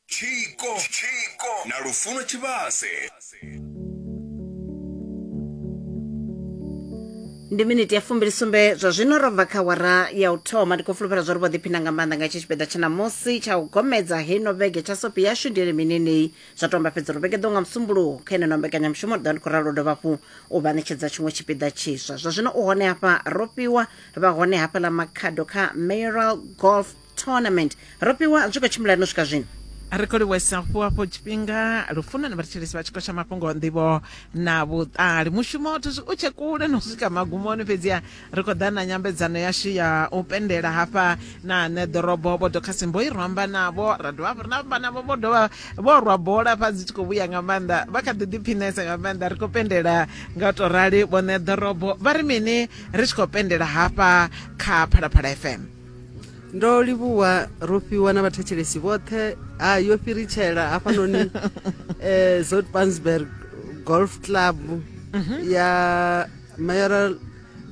tshiko tshiko na lufuno tshivhase ndi miniti ya fumbili sumbe zwa zwino ro bva kha wara ya u thoma ndi khou fulufhela zwa ri vho ḓiphina nga maanḓa nga itshi tshipiḓa tsha ṋamusi tsha u gomedza heino vhege tsha sopi yashu ndi elimi nenei zwa tomba fhedza uri vhege ḓo nga musumbuluwo kha eneno mbekanyamushumo ri ḓa ndi khou ralo dovha hafhu u vha ṋetshedza tshiṅwe tshipiḓa tshiswa zwa zwino u hone hafha ro fhiwa vha hone hafha ḽa makhado kha mayoral golf tournament ro fhiwa zwi khou tshimbila no swika zwino ri khou livhuesa fhu hafho tshifhinga lufuno na vhathetshelesi vha tshiko tsha mafhungo nḓivho na vhuṱali mushumo wa thusi u tshe kule no swika magumoni fhedziha ri khou ḓa na nyambedzano yashu ya u pendela hafha na ane ḓorobo vho dokhasimbo i ro amba navho ra dovha hafhu ri na amba navho vho dovha vho rwa bola fha dzi tshi khou vhuya nga maanḓa vha kha ḓi ḓiphinesa nga maanḓa ri khou pendela nga u tou rali vhone ḓorobo vha ri mini ri tshi khou pendela hafha kha phalaphala fm ndo livhuwa rofhiwa na vhathetshelesi vhoṱhe ha yo fhiritshela hafhanoni um eh, zotpansberg golf club mhm. ya mayoral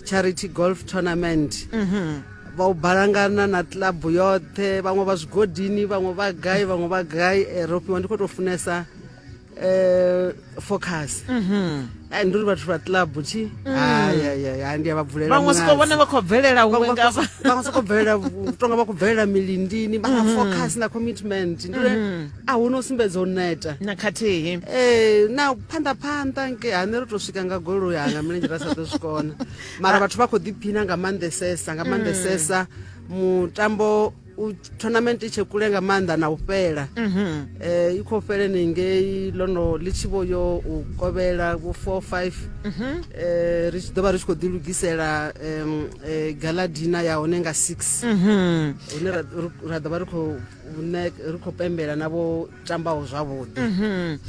charity golf tournament mhm. vha u balangana na club yoṱhe vhaṅwe vha zwigodini vhaṅwe vha gai vhaṅwe vha gai eh, rofhiwa ndi khou tou funesa eh focus mhm ai nduri vhathu vha club chi mm. hai hai hai ndi ava bvulela vhaṅwe soko vhone vha khou bvelela huṅwe ngavha vhaṅwe soko bvelela tonga vha khou bvelela milindini vha nga mm. focus na commitment ndi uri mm. a hu no sumbedza u neta na khathihi eh na phanḓa phanḓa nke ha nṋe ri tou swika nga goloi hanga milenzhe ra sa ḓo swikona mara ah. vhathu vha khou ḓiphina nga maanḓesesa nga maanḓesesa mutambo u tournament i tshe kule nga maanḓa na u fhela um i khou fheleni ngei lono ḽi tshi vho yo u kovhela vho four five um mhm. eh, ri tshi ḓo vha ri tshi khou ḓilugisela um eh, galadina ya hone nga six mhm. hune ra ḓo vha ri khou ri khou pembela na vho tambaho zwavhuḓi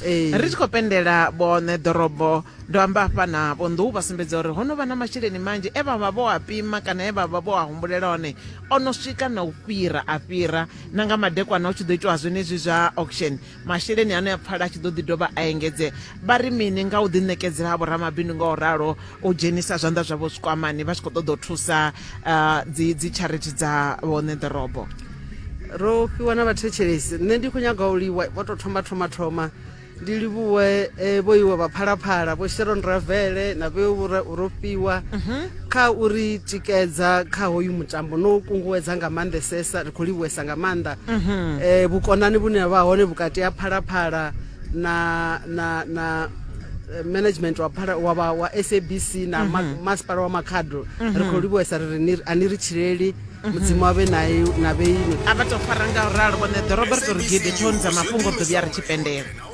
Ee. ri tshi khou pendela vhoṋe ḓorobo ndo amba hafha na vhonḓou vha sumbedza uri ho no vha na masheleni manzhi e vha vha vho a pima kana e vha vha vho a humbulela one o no swika na u fhira a fhira na nga madekwana hu tshi ḓo itiwa zwenezwi zwa auction masheleni ano ya pfala a tshi ḓo ḓi dovha a engedzea vha ri mini nga u ḓiṋekedzela ha vhoramabindu nga u ralo u dzhenisa zwanḓa zwavho zwikwamani vha tshi khou ṱoḓa u thusa dzi dzi charity dza vhone ḓorobo ro fhiwa na vhathetshelesi nṋe ndi khou nyaga u liwa vho tou thoma thoma thoma ndi livhuwe e, vho iwe vha phalaphala vho sharon ravele na vhe ro fhiwa mhm. kha uri tikedza kha hoyu mutambo no kunguwedza nga maanḓesesa ri khou livhuwesa nga maanḓa um vhukonani vhune ha vha hone vhukati ha phalaphala na na na eh, management wa phala wa wa, wa SABC na ma, mhm. masipala wa Makhado mhm. ri khou livhuwesa ri ni ani ri tshileli mhm. mudzimu wa vhe nae na vhe ino a vha tou fara nga u ralo vhone ḓo robert uri gidi tsho nza mafhungo ḓo vhuya ri tshi pendela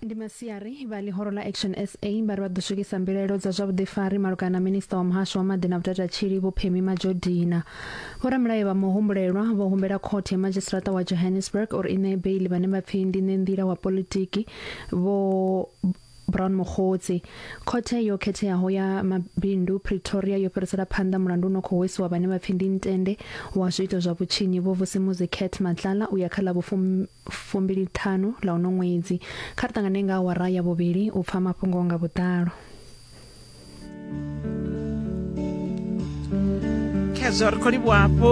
Ndi masiari vha ḽihoro ḽa Action sa vha ri vha ḓo swikisa mbilaelo dza zwa vhuḓifari malugana na Minisiṱa wa Muhasho wa Maḓi na Vhutatatshili Vho Phemie Majodina. Vhoramilayo vha muhumbulelwa vho humbela Khothe ya Madzhisiṱaraṱa wa Johannesburg uri i ṋee beiḽi vhane vha pfi ndi ṋenḓila wa politiki Vho Brown Mokgotsi. Khothe yo khetheaho ya Mabindu Pretoria yo fhirisela phanḓa mulandu u no khou hwesiwa vhane vha pfi ndi ntende wa zwiito zwa vhutshinyi Vho Vusimuzi Cat Matlala u ya kha ḽa vhufumi fumbiliṱhanu ḽa uno ṅwedzi. Kha ri ṱangane nga awara ya vhuvhili u pfa mafhungo nga vhuḓalo. khezwo ri khou livhuwa hafhu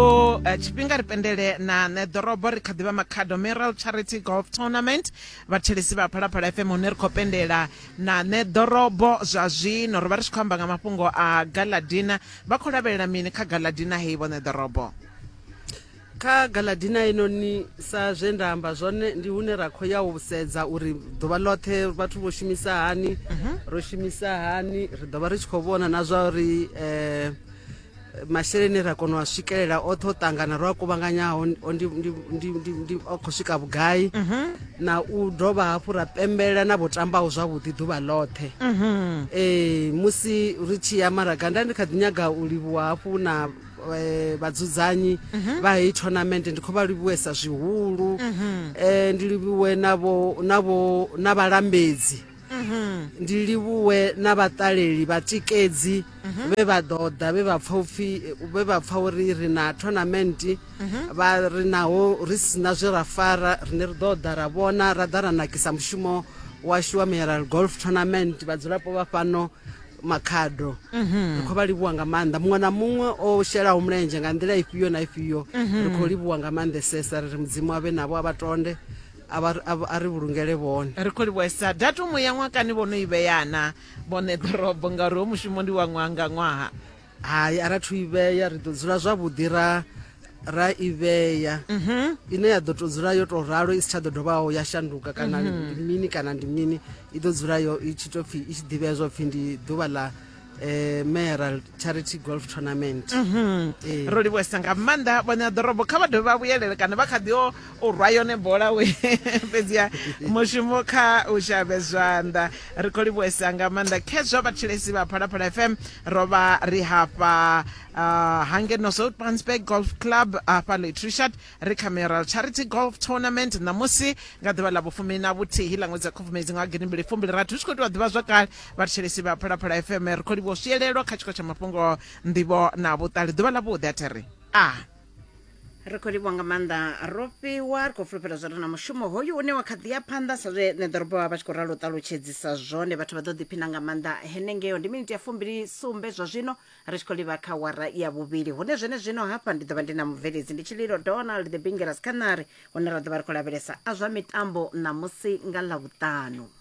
eh, tshifhinga ri pendele na nṋe ḓorobo ri kha ḓivha makhado meral charity golf tournament vhathelesi vha phalaphala fm hune ri khou pendela na nṋe ḓorobo zwa zwino ro vha ri tshi khou amba nga mafhungo a galadina vha khou lavhelela mini kha galadina hei vhone ḓorobo Kha Galadina inoni sa zwe nda amba zwone ndi hune ra khou ya u sedza uri ḓuvha ḽoṱhe vhathu vho shumisa hani mhm. ro shumisa hani ri ḓo vha ri tshi khou vhona na zwa uri um masheleni ra kona u a swikelela oṱhe o ṱangana ro a kuvhanganyaho o khou swika vhugai mhm. na u dovha hafhu ra pembela na vho tambaho zwavhuḓi ḓuvha ḽoṱhe ee mhm. musi ri tshi ya maraga nda ndi kha ḓi nyaga u livhuwa hafhu na eh, vhadzudzanyi mhm. vha heyi tournament ndi khou vha livhuwesa zwihulu mhm. eh, ndi livhuwe na vhalambedzi mhm. ndi livhuwe na vhaṱaleli vhatikedzi vhe vha ḓo ḓa vhe vha pfa upfhi vhe vha pfa uri ri na tournament vha ri naho ri sina zwe ra fara rine ri ḓo ḓa ra vhona ra ḓa ra nakisa mushumo washu wa mineral golf tournament vhadzulapo vha fhano makhado mhm. ri khou vha livhuwa nga maanḓa muṅwe na muṅwe o shelaho mulenzhe nga nḓila ifhio na ifhio mhm. ri khou livhuwa nga maanḓesesa ri ri mudzimu avhe navho a vha tonde a ri vhulungele vhone ri khou livhuwesa datumu ya ṅwakani vho no i vheyana vhone ḓorobo ngauri ho mushumo ndi wa ṅwaha nga ṅwaha hai ara thu ivheya ri ḓo dzula zwavhuḓi ra ra ivheya mhm. ine ya ḓo to dzula yo to ralo i si tsha ḓo dovhaho ya shanduka kana mhm. ndi mini kana ndi mini i ḓo dzula yo i tshi to pfhi i tshi ḓivhea zwo pfhi ndi ḓuvha ḽa eh Meral Charity Golf Tournament mhm. eh. ro livhuwesa nga maanḓa vhone a ḓorobo kha vha dovhe vha vhuyelele kana vha kha ḓi o u rwa yone bola we fhedzi ya mushumo kha u shavhe zwanḓa ri khou livhuwesa nga maanḓa khezwa vhatshilesi vha phalaphala fm rovha ri hafha uh, hangeno soutpansburg golf club hafha letrishard ri kha mural charity golf tournament ṋamusi nga ḓuvha ḽa vhufumi na vhuthihi ḽa ṅwedzi wa khubvumedzi nga gidi mbili fumbili rathu ri tshi khou itiwa ḓivha zwakale vhathetshelesi vha phalaphala fm ri khou livha u swiyelelwa kha tshiko tsha mafhungo nḓivho na vhuṱali ḓuvha ḽa vhuḓi a thiri a ah. ri khou livhuwa nga maanḓa ro fhiwa ri khou fulufhela zwa ri na mushumo hoyu une wa kha ḓi ya phanḓa sa zwe nṋe ḓorobo vha vha tshi khou ralo u ṱalutshedzisa zwone vhathu vha ḓo ḓiphina nga maanḓa henengeo ndi miniti ya fumbili sumbe zwa zwino ri tshi khou livha kha wara ya vhuvhili hune zwene zwino hafha ndi ḓo vha ndi na mubveledzi ndi tshililo donald the bingeras khanari hune ra ḓo vha ri khou lavhelesa a zwa mitambo ṋamusi nga ḽavhuṱanu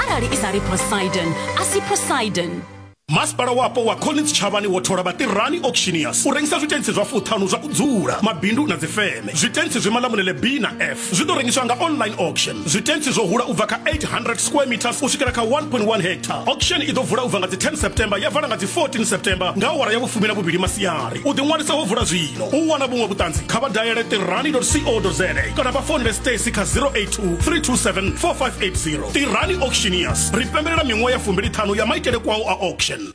arali i sa ri poseidon a si poseidon masipala wapo wa collins tshavhani wo thola vhatirani auctioneers u rengisa zwitentsi zwa fuṱhanu zwa u dzula mabindu na dzifeme zwitentsi zwi malamulele b na f zwi ḓo rengiswa nga online auction zwitentsi zwo hula u bva kha 800 square meters u swikela kha 1.1 hectare auction i ḓo vula u bva nga dzi 10 september ya vala nga dzi 14 september nga awara ya vhufumi na vhuvhili masiari u ḓiṅwalisa ho vula zwino u wana vhuṅwe vhuṱanzi kha vha dayele tirani co za kana vha founele stacy kha 08 3274580 tirani auctioneers ri pembelela miṅwaha ya fumbili ṱhanu ya maitele kwao a auction